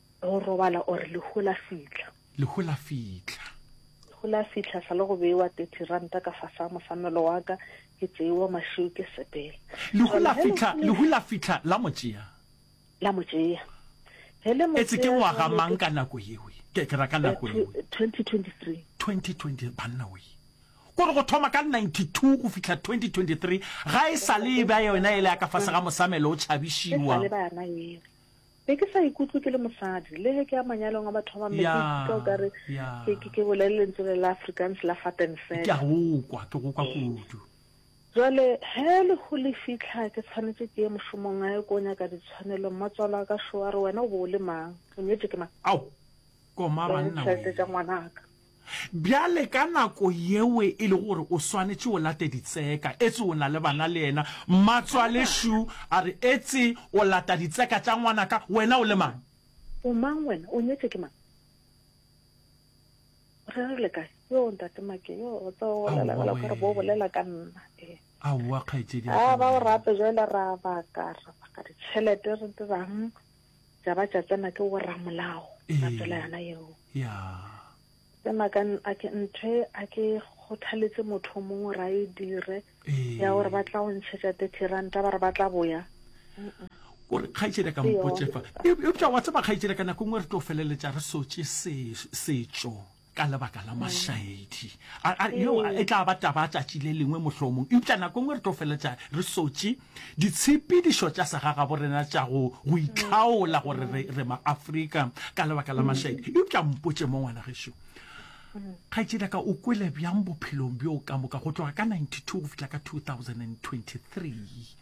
Go robala or lehu la fihla. Lehu la fihla. Lehu la fihla sa le go bewa 30 ranta ka fasa mosamelo wa ka ke tseiwa mašiu ke sepela. Lehu la fihla lehu la fihla la mo tšea. La mo tšea. He le mo tšea. E se ke wa ga mang ka nako yewe. Ke ke ra ka nako yewe. 2023. 2020 banna we. Gore go thoma ka 92 go fihla 2023 ga e sa le e ba yona ele ya ka fase ga mosamelo o tšhabishiwa. E sa le ba yona yewe. Be ke sa ikutlwe ke le mosadi, le ge ke ya manyalong a batho ba bangwe, ke ikutlwa o kare ke, ke, ke bolele lentswe le la Afrikaans la fat and fat. Ke a go kwa, ke go kwa kudu. Jwale, he lehu le fihla, ke tshwanetše ke ye mošomong gae ko nyaka ditshwanelo. Mmatswale wa ka šo a re, Wena o be o le mang? O nyetšwe ke mang? Ao, koma banna wee! Ditšhelete tša ngwanaka. Bjale ka nako yeo e le gore o swanetše o late ditseka, etse o na le bana le yena. Mmatswale Shu a re, Etse o lata ditseka tša ngwanaka? Wena o le mang? O mang wena? O nyetšwe ke mang? Re re le kae? Yoo, Ntate Make, yoo, o tseba, o bolela bjalo ka gore bo bolela ka nna. Ee. Aowa, kgaetšedi ya ka, Aaba o rate bjale ra baka, ra baka ditšhelete, re dira'ng? tša ba tša tsena ke go ramolago ba tsela yana yeo tsena ka a ke nthe a ke kgothaletse motho mongwe ra e dire ya gore ba tla go ntšhetša thirty ranta ba re ba tla boya gore kgaitsedi ka mpotsefa eupša wa tseba kgaitsedi ka nako nngwe re tlo feleletša re sotše setšo ka lebaka la mašaedi yeo e tla ba taba tšatši le lengwe mohlomong eupša nako nngwe re tlo feletša re sotše ditshepedišo tša segagabo rena tša go go itlhaola gore re, re maafrika ka lebaka la mašaedi eupša mpotše mo ngwana gešo kgaetšedi ka o kwele bjang bophelong bjo ka moka go tloga ka 92 go fihla ka 2023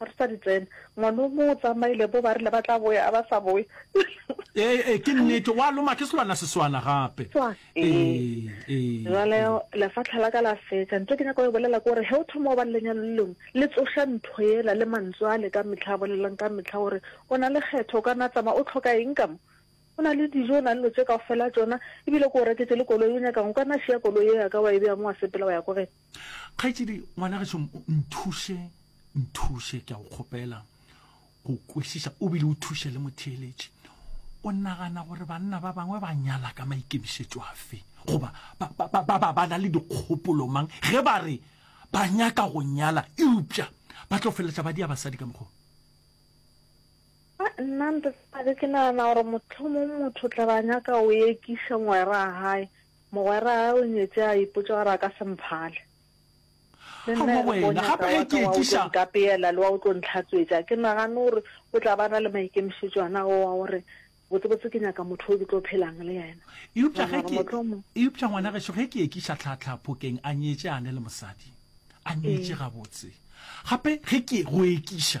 A re sa di tsena. Ngwana o mong o tsamaile bo ba rile ba tla boya a ba sa boye. Ee, ee, ke nnete. Wa loma ke selwana seswana gape. Swa, ee. Ee, ee, Jwale ee. lefatlha la ka la fetša. Ntho e ke nyaka go e bolela ke gore ge o thoma go ba le lenyalo le lengwe, le tsoša ntho yela le mantswe ale ka mehla a bolelwang ka mehla gore o na le kgetho, o ka na tsamaya, o tlhoka eng ka mo? O na le dijo, o na le dilo tše kaofela tšona, ebile ke go reketše le koloi, o nyaka'ng? O ka na šiya koloi ye ya ka wa e beya mo wa sepela wa ya ko ge? kgaetšedi ngwana ge šomo nthuše nthuše ke a go kgopela go kwešiša o bile o thuše le motheeletši o nagana gore banna ba bangwe ba nyala ka maikemišetšo afe goba ba ba ba na le dikgopolo mang ge ba re ba nyaka go nyala eupša ba tlo feleletša ba dia basadi ka mokgwa nna ntate ke nagana gore motlhomong motho tla ba nyaka o ekiša ngwera gae Mogwera o nyetše a ipotša gore a ka se mphale. Le nna e re ke o nyaka wa ka wa o tlo nkapeela le wa o tlo ntlhatswetša. Ke nagane gore o tla ba na le maikemišetšo ana ao a gore botsebotse ke nyaka motho o ke tlo phelang le yena. Eupša ge ke, eupša ngwana gešo ge ke ekiša tlhaatlhaa phokeng a nyetše a ne le mosadi. A nyetše gabotse. Gape ge ke go ekiša.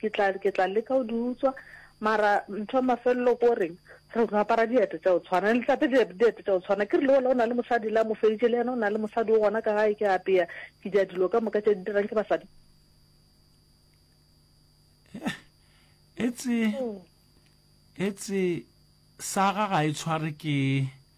Ke tla ke tla leka o di utswa mara ntho ya mafelelo ko reng re go apara diete tša o tshwana le tlape diete diete tša o tshwana ke re le ola o na le mosadi la mo feditše le yena o na le mosadi o gona ka gae ke apea ke dia dilo ka moka tše di dirang ke basadi etse etse saga ga e tshware ke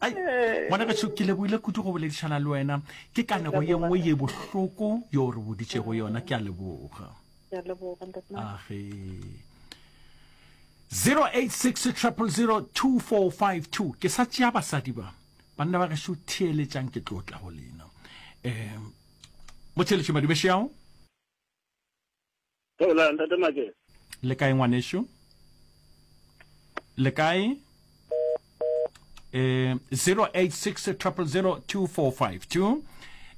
Ai, ngwana gašo ke leboile kudu go boledišana le wena ke kanego ye nngwe ye bohloko yo o re boditšego yona ke a leboga Ke a leboga, ntate Mane. age 0860002452 ke sa tšea basadi ba banna ba gešo theeletšang ke tlo tla go lena um motheletši madibešeao Theolang, Ntate Makela. Le kae ngwanešu? Le kae? Eh, 086 000 2452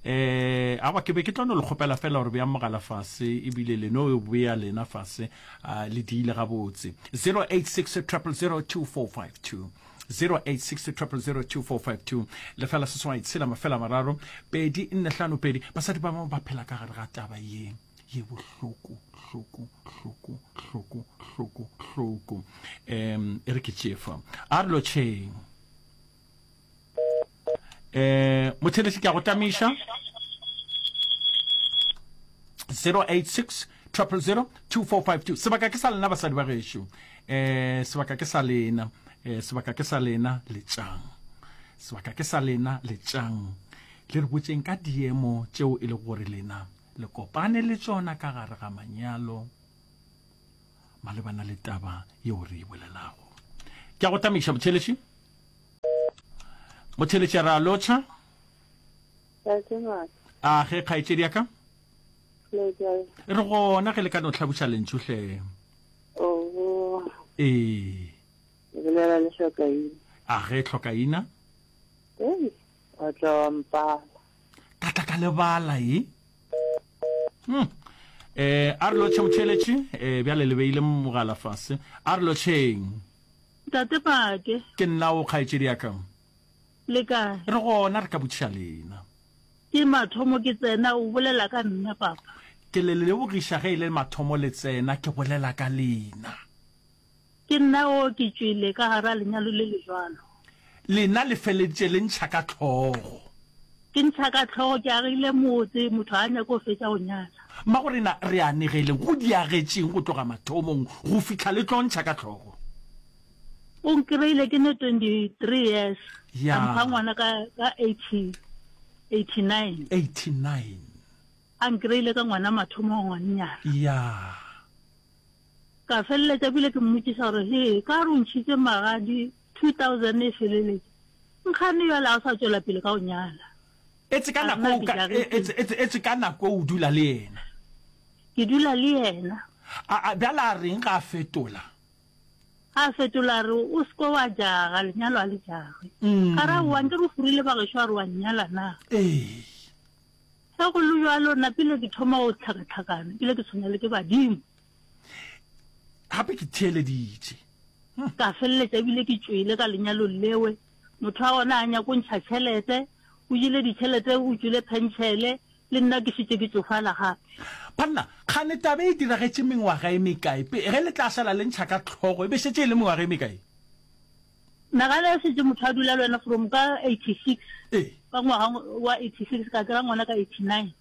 eh aba ke be ke tlono le kgopela fela gore bea mogala fase ebile leno o bea lena fase a le diile gabotse 086 0002452 086 lefela seswai tshela mafela mararo pedi nne hlano pedi basadi ba bangwe ba phela ka gare ga taba yeng ye bohloko hloko hloko hloko hloko hloko um e re ke tšefa a re lotšheng um mothelesi ke a go tamiša 086 triple zero two four five two sebaka ke sa lena basadi ba gešo um sebaka ke sa lena um sebaka ke sa lena letšang sebaka ke sa lena letšang le re botseng ka diemo tšeo e le gore lena le kopane le tšona ka gare ga manyalo malebana le taba yeo re e bolelago ke a go tamiša botheletši botheletši ra lotšha a ge kgaetšedi ya ka re gona ge le ka no tlhabuša lentšuhle ee a ge tlhokaina O tla wa mpala. Ka tla ka lebala e. Hmm. Eh, a re lo tšhemotšheletše eh, bjale le beile mogala fase a re lo tšheng tate pake ke nna o kgaetšedi ya ka le kae re gona re ka botšiša lena ke mathomo ke tsena o bolela ka nna papa ke le lebogiša ge e le mathomo le tsena ke bolela ka lena Ke nna o ke tšwele ka gara lenyalo le le jwalo. Lena le feleditše le ntšha ka hlogo. Ke ntšha ka hlogo, ke agile motse, motho ga a nyake go fetša go nyatša. Magorena, re anegele go di agetšeng go tloga mathomong go fihla le tlo ntšha ka hlogo. O nkreile ke ne 23 years, a mpha ngwana ka 89. 89. A nkreile ka ngwana mathomong, ngwannyana. Ya. Ka feleletša bile ke mmotšiša gore, Hee, ka re o ntšhitše magadi 2000 e feleletše, nkgane bjale ga o sa tšwela pele ka go nyala? Etse ka nako o ka, etse, etse, etse ka nako o dula le yena. Ke dula le yena. A, a bjale a reng ga a fetola? A fetola a re, O seke wa jaga, lenyalo a le jagwe. Ka ra, Wa nke re furile bagešo a re wa nnyala na? Ee. Ge go le bjalo, nna pele ke thoma go tlhakatlhakana, bile ke tshwenya le ke badimo. gape ke theeleditše hmm. ka feleletša ebile ke tšwele ka lenyalong lewe motho wa gona a nyako ntšha tšhelete o jele ditšhelete o tšwele pentšhele le nna ke šetse ke tsofala gape banna kgane tabe e diragetse mengwaga e mekae pe ge le tla sala le ntšha ka tlhogo e be šetse e le mengwaga e mekae nagana ya setse motho a dula le wena from ka eighty six ee. ka ngwaga wa eighty six ka kry-a ngwana ka eighty nine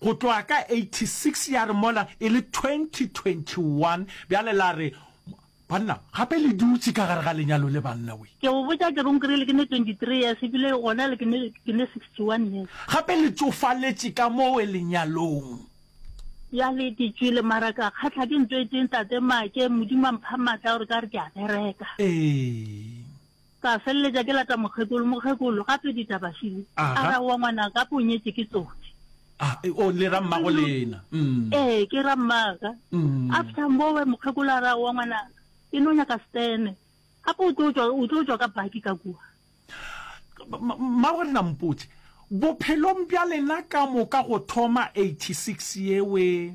Go tloga ka 86 ya re mola e le 2021 bjale la re Banna gape le dutše ka gare ga lenyalo le banna we. Ke go botša ke reng kere le ke ne 23 years ebile gona le ke ne ke ne 61 years. Gape le tšofaletše ka mo we lenyalong. Bjale ke tšwele mara ka kgathla ke ntho e tee ntate Make, Modimo a mpha matla gore ka re ke a bereka. Ee. Ka feleletša ke lata mokgekolo. Mokgekolo, Gape ditaba Shili. A Aha. ra owa ngwana ka po nyetše ke tsotsi. A, e, o le ra mmago lena. Mm. Ee, ke ra mmaka. Mm. After mbowe mokgekolo a ra owa ngwana ke no nyaka stene. Gape o tlo tšwa o tlo tšwa ka baki ka kua. Ma- ma- Mmago lena mpotše. Bophelong bja lena ka moka go thoma 86 yewe.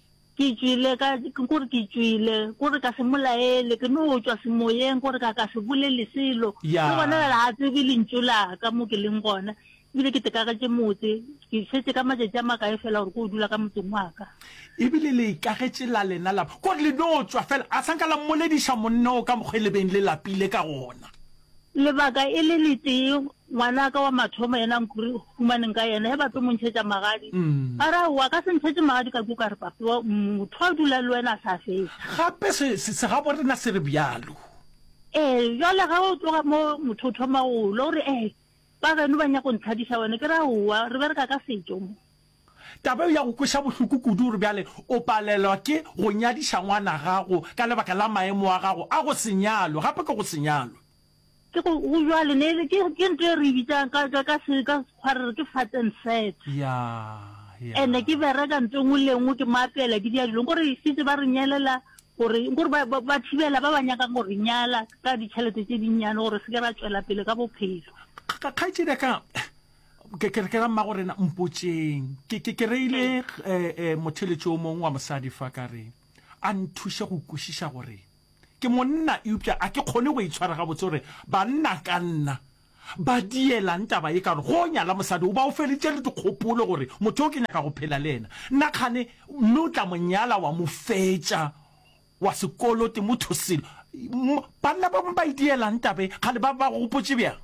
Ke tšwile ka, kore ke tšwile, kore ka se mo laele, ke no tšwa semoyeng, kore ka ka se bolele selo. Ya. Le gona bjale ga a tsebe lentšu la ka mo ke leng gona, ebile ke tekagetše motse. Ke šetše ka matšatši a makae fela gore ke o dula ka motseng wa ka. Ebile le ikagetše la lena lapa, kore le no tšwa fela, a sa nka la mmolediša monna o ka mokgwa e le beng le lapile ka gona. Lebaka e le letee, ngwanaka wa mathomo yena nkuri humaneng ka yena, he bape mo ntšhetša magadi. Ba ra, Wa ka se ntšhetše magadi ka kua, ka re, Bape wa motho a dula le wena a sa fetša. Gape se, se, segaborena se re bjalo. Ee, bjale ge o tloga mo, motho o thoma go lla, o re, Ee, bageno ba nyaka go nthadiša wena. Ke re, Aowa, re bereka ka setšo mo. Taba yeo ya go kweša bohloko kudu gore bjale o palelwa ke go nyadiša ngwana gago ka lebaka la maemo a gago a go se nyalwe, gape ke go se nyalwe. Ke go, go bjalo, ne e le, ke, ke ntho e re e bitsang ka, ka, ka, se, ka Sekgwa re re ke fat and set. Ya, ya. Ene ke bereka ntho engwe le engwe, ke mo apela, ke dira dilo. Nko re šetše ba re nyelela gore, nko re ba, ba, ba thibela ba ba nyakang go re nyala ka ditšhelete tše dinnyane gore re se ke ra tšwela pele ka bophelo. Kgaetšedi ya ka, Ke ke ke ra mmago rena mpotšeng. Ke ke ke reile eh eh motheletši o mong wa mosadi fa ka re a nthuše go kwešiša gore ke monna eupša a ke kgone go itshwara gabotse gore banna ka nna ba dielang taba ye ka gore go nyala mosadi o ba o feleditše le dikgopolo gore motho o ke nyaka go phela le yena nna kgane mme o tla mo nyala wa mo fetša wa sekolo Timotho Silo, M, Banna ba bangwe ba e dielang taba e, kgale ba ba go gopotše bjang?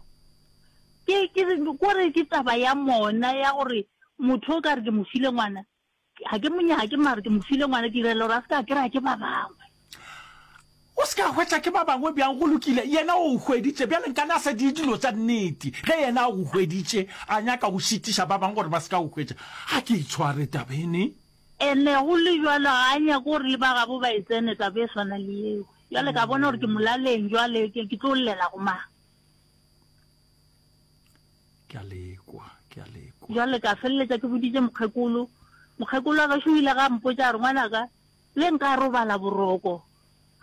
Ke, ke, ko re ke taba ya mona ya gore motho o ka re ke mo file ngwana, ga ke mo nyake mare ke mo file ngwana, ke direla gore a se ka kry-a ke ba bangwe. O se ka hwetša ke ba bangwe bjang? Go lokile, yena o hweditše, bjale nkane a sa die dilo tša nnete, ge yena a go hweditše a nyaka go šitiša ba bangwe gore ba se ka go hwetša. Ga ke itshware taba e ne, Ene go le jwalo ga a nyake gore le ba gabo ba e tsene taba e swana le yeo. Jwale ka bona gore ke molaleng jwale ke ke tlo llela go mang. Ke a lekwa, ke a lekwa. Jwale ka feleletsa ke boditse mokgekolo. Mokgekolo a gašo ile ga mpotsa re ngwanaka le nka robala boroko.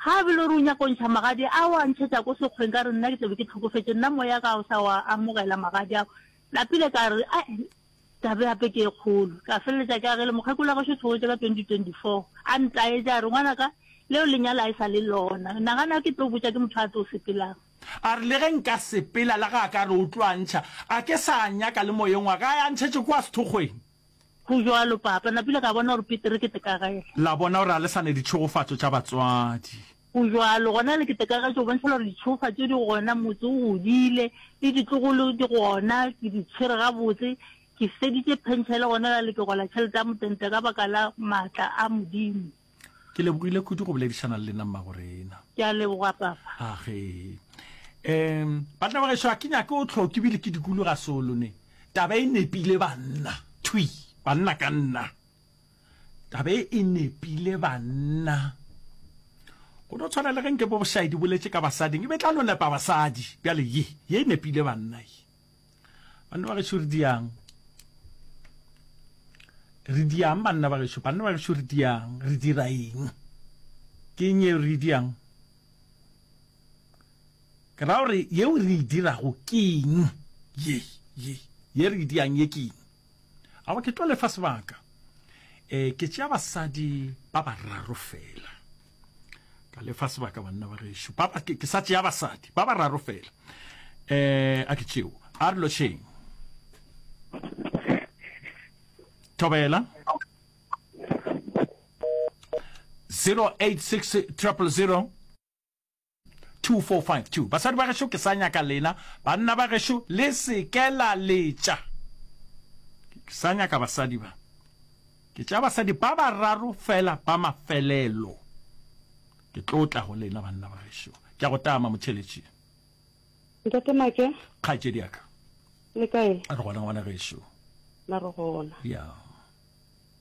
Ga a bele re o nyaka ntšha magadi a wa ntšhetsa ko sekgweng ka re nna ke tlabe ke tlhokofetse nna moya ka o sa wa amogela magadi ao. Lapile ka re a Taba ya gape ke e kgolo. Ka feleletša ke a ge le mokgekolo wa gašo o theogetše ka 2024, a ntaetša a re, Ngwanaka, leo le nyala e sa le lona. Nagana ke tlo botša ke motho a tlo sepelang. A re, Le ge nka sepela, le ge a ka re o tlo a ntšha, a ke sa a nyaka le moyeng wa ka, a ye a ntšhetše kua sethokgweng. Go bjalo, Papa. Napile ka bona gore Peter ke tekagela. La bona gore ga le sa ne ditšhegofatšo tša batswadi. Go bjalo, gona le keteka ka tšo bontšhela gore ditšhofa tše di gona, motse o godile, le ditlogolo di gona, ke di tshwere gabotse, ke feditše phenšele, gona la le ke gola tšhelete ya motente ka baka la maatla a Modimo. Ke lebogile kudu go boledišana le lena mmagorena. Ke a leboga papa. Age. Um, banna ba gešo a ke nyake o tlhoke bile ke dikulu ga solo ne. Taba e nepile banna. Thwi, banna ka nna. tabe e nepile banna go no tshwana le ge nke bo bošaedi boletše ka basading e be tla no nepa basadi bjale ye ye e nepile banna ye banna ba gešo re diang re diang banna ba gešo banna ba gešo re diang re dira eng ke eng yeo re e diang ke ra gore yeo re e dirago ke eng ye ye ye re e diang ye ke eng Awa ke tlo lefa sebaka e ke tšea basadi ba bararo fela ka lefa sebaka banna ba gešo ke sa tšea basadi ba bararo fela um a ke tšeo a re lošeng thobela 086000 2452 Basadi ba gešo ke sa nyaka lena, banna ba gešo le se ke la letša. Ke sa nyaka basadi ba. Ke tša basadi ba bararo fela ba mafelelo. Ke tlo tla go lena banna ba gešo. Ke a go tama, Motšheletši. Ntate Make. Kgaetšedi ya ka. Le kae? Re gona ngwana gešo. Na re gona. Ya.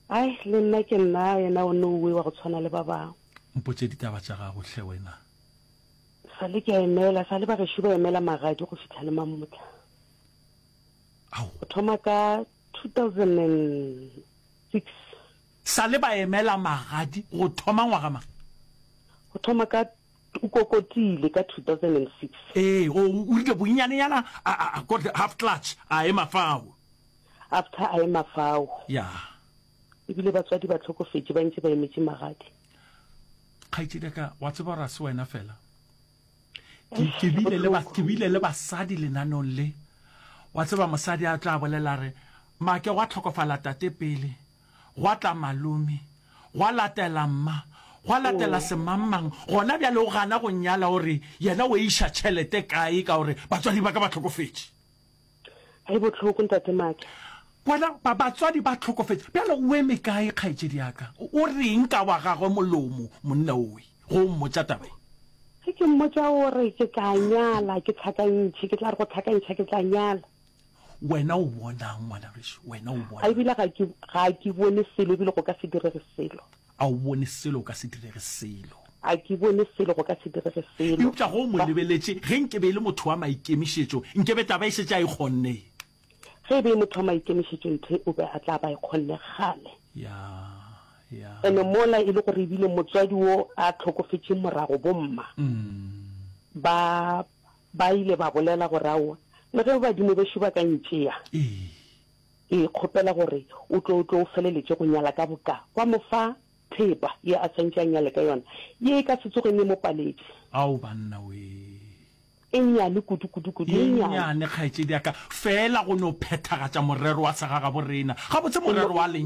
Ai, le nna ke nna a yena o nouwe wa go tshwana le ba bangwe. Mpotše ditaba tša gago hle wena. Sa le ke a emela, sa le bagešo ba emela magadi go fihla le mamotla. Ao. Go thoma ka 2006. Sa le ba emela magadi go thoma ngwaga mang? Go thoma ka o kokotile ka 2006. Ee, o, o rile bonnyane nyana, a, a, a got half clutch, a ema fao. After a ema fao. Yeah. Ebile batswadi ba tlhokofetše ba ntše ba emetše magadi. Kgaitšedi ka wa tseba gore a se wena fela. Ke bile le ba ke bile le basadi lenanong le. Wa tseba mosadi a tla bolela re make wa tlhokofala tate pele. Gwa tla malome. Gwa latela mma. Gwa latela mm. semammang. Gona bjale o gana go nyala gore yena o iša tšhelete kae ka gore batswadi ba ka ba tlhokofetše. Ge bohloko, Ntate Maake. Bona, ba, batswadi ba hlokofetše. Bjale o eme kae, kgaetšedi ya ka? O re'ng ka wa gagwe molomo, monna owe, ge o mmotša taba ye? Ge ke mmotša gore ke tla nyala, ke hlakantšhe, ke tla re go hlakantšha ke tla nyala. Wena o bona'ng, ngwana gešu? Wena o bona? Ga ebile ga ke, ga ke bone selo ebile go ka se direge selo. A o bone selo go ka se direge selo? A ke bone selo go ka se direge selo? Eupša ge o mo lebeletše, ge nke be e le motho wa maikemišetšo, nke be tla ba e šetše a e kgonne. Ge e be e motho wa maikemišetšo, nthe o be a tla ba e kgonne kgale. Ya, ya. Ene mola e le gore e bile motswadi wo a hlokofetše morago, bomma ba, ba ile ba bolela gore, Aowa, le ge badimo bešo ba ka ntšea, Ee. Ke kgopela gore o tlo o tlo o feleletše go nyala ka boka wa mo fa thepa ye a swantše a nyale ka yona, ye e ka se tsoge ne mo paletše. Ao banna wee! E nnyane kudu, kudu, kudu e nnyane. Ye nnyane kgaetšediaka, feela go no phethagatša morero wa segagaborena, gabotse morero wa lenyalo.